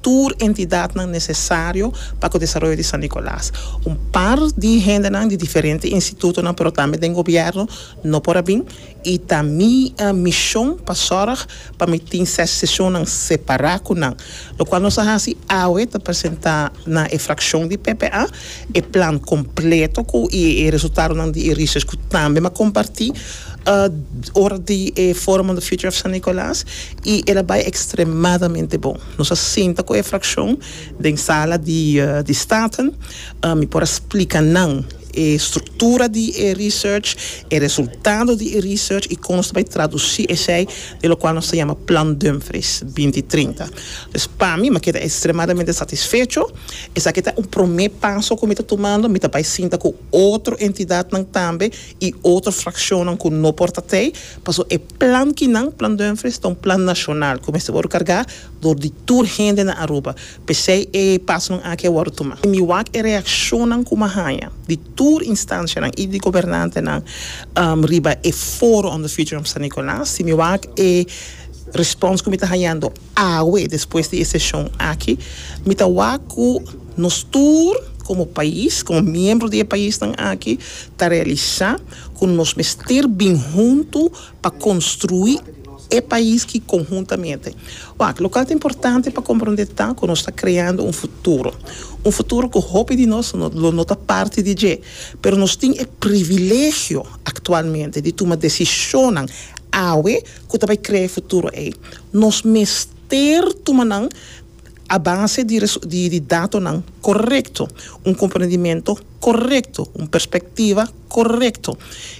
tur entidadnan nesesario pa ku desaroyo di San Nicolas. Un par di hendenan di diferente institutonan pero tambe den gobièrnu no por a bin i ta mi mishon pa sòrg pa mi tin ses seshonnan separá ku nan. Lokual nos a hasi awe ta presentá na e frakshon di PPA. E plan completo cu y e resultadonan di e research cu tambe m'a comparti ora di e Forum on the Future of San Nicolas y el a bay extremadamente bon. Nos a sinta cu e fraccion den Sala di di Staten, mi por a splica nan e structura di e research, e resultado di e research y con nos ta bay traduci esey den locual nos ta yama Plan Dumfries binti trinta. Pues pa mi m'a keda extremadamente satisfecho. Esaki ta un promé paso ku mi ta tumando, mi ta bai sinta ku otro entidatnan tambe i otro frakshonnan ku no por ta tei, paso e plan ki nan, Plan Dumfries, ta un plan nashonal ku mester wòrdu kargá dor di tur hende na Aruba. P'esei e pasonan aki a wòrdu tumá. Mi wak e reakshonnan ku mi a haña di tur instanshanan i di gobernantenan riba e foro on the future of San Nicolas i mi wak e respons ku mi ta hañando. Awe, despues di e seshon aki, mi ta wak ku nos tur komo pais, komo miembro di e paisnan aki, ta realisá ku nos mester bin huntu pa konstruí e pais ki konhuntamente. Wak, loke ta importante pa komprondé ta ku nos ta kreando un futuro, un futuro ku hopi di nos lo no ta parti di dje, pero nos tin e privilegio aktualmente di tuma desishonnan awe ku ta bai krea e futuro ei. Nos mester tuma nan a base di datonan korekto, un komprendimentu korekto, un perspektiva korekto.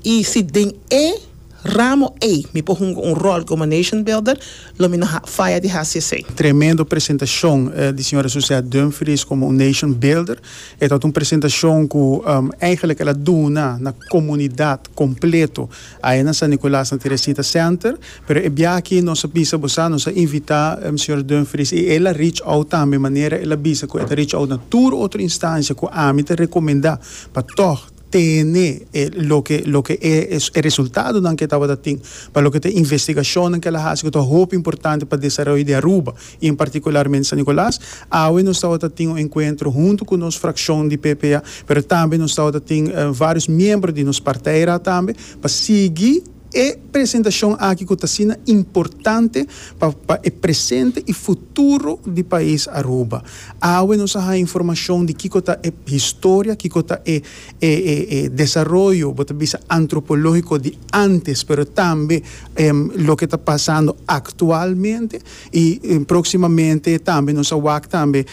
I si den e ramo ei mi por hunga un ròl komo nation builder, lo mi no faya di hasi esei. Tremendo presentashon di señora Suzette Dumfries komo un nation builder. E tabata un presentashon ku eigenlijk el a duna na komunidat kompleto Aye na San Nicolas na Teresita Center, pero e biaha aki nos a bisa bo sa, nos a invita Señor Dumfries y el a reach out tambe manera el a bisa cu e ta reach out na tur otro instancia cu ami ta recomenda pa tog tene e loke loke e e resultadonan cu e tabata tin pa loke ta investigacionnan cu el a haci cu ta hopi importante pa desaroyo di Aruba. y en particularmente San Nicolas. Awe nos tabata tin un encuentro hunto cu nos fraccion di PPA, pero tambe nos tabata tin varios miembro di nos partij ra tambe, pa sigui e presentacion aki cu ta asina importante pa pa e presente y futuro di pais Aruba. Awe nos a haña informacion di kico ta e historia, kico ta e e e e desaroyo, bo ta bisa antropologico di antes, pero tambe loke ta pasando actualmente. Y proximamente tambe nos a wak tambe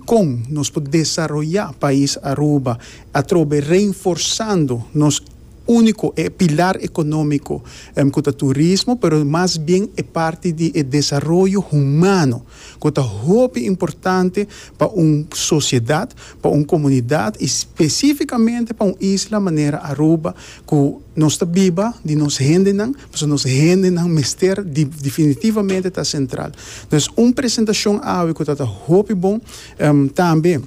con nos por desaroya pais Aruba atrobe reinforzando nos unico e pilar economico cu ta turismo pero mas bien e parti di e desaroyo humano cu ta hopi importante pa un sociedad, pa un comunidad y specificamente pa un isla manera Aruba cu nos ta biba di nos hendenan Pasobra nos hendenan mester definitivamente ta sentral. No es un presentacion awe cu ta ta hopi bon. Tambe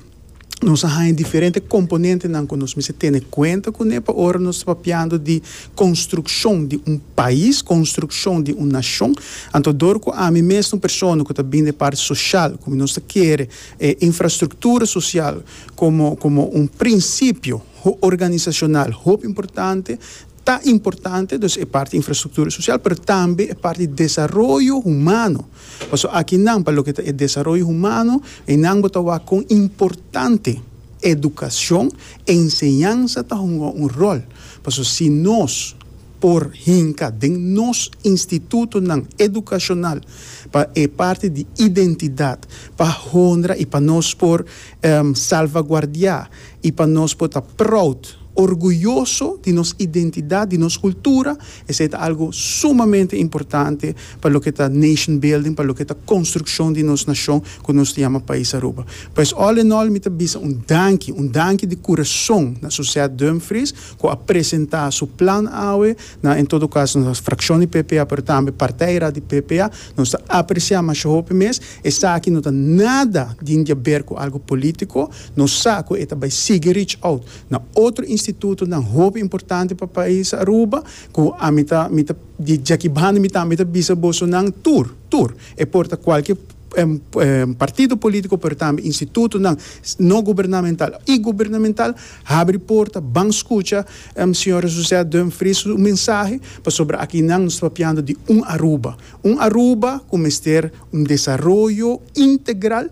nos a haña diferente componentenan cu nos mester tene cuenta cu ne pa ora nos ta papiando di construccion di un pais, construccion di un nacion. Anto dor cu ami mes un persona cu ta bin den e parti social, cu nos ta kere e infrastructura social como un principio organizacional hopi importante, Ta importante dus e parti infrastruktura sosial pero tambe e parti desaroyo humano pasobra aki nan pa loke ta e desaroyo humano eynan bo ta wak kon importante edukashon e enseñansa ta hunga un ròl pasobra si nos por hinka den nos institutonan edukashonal pa e parti di identidat pa honra i pa nos por salvaguardiá I pa nos por ta proud, orguyoso, di nos identidat, di nos kultura, esei ta algu sumamente importante pa loke ta nation building, pa loke ta konstrukshon di nos nashon ku nos ta yama Pais Aruba. Pues, all in all mi ta bisa un danki, un danki di kurason na Suzette Dumfries ku a presentá su plan awe na en todo kas nos frakshon di PPA pero tambe parteirat di PPA. Nos ta apresiá masha hopi mes. Esaki no ta nada din di a ber ku algu polítiko. Nos sa cu e ta bay sigui reach out na otro institutonan hopi importante pa pais Aruba, cu a mi ta, mi ta, di djaki banda mi tambe ta bisa boso nan tur, tur, e por ta cualkier partido politico pero tambe institutonan no gubernamental y gubernamental, habri porta, ban scucha Sra. Suzette Dumfries su mensahe, pasobra aki nan nos ta papiando di un Aruba, un Aruba cu mester un desaroyo integral.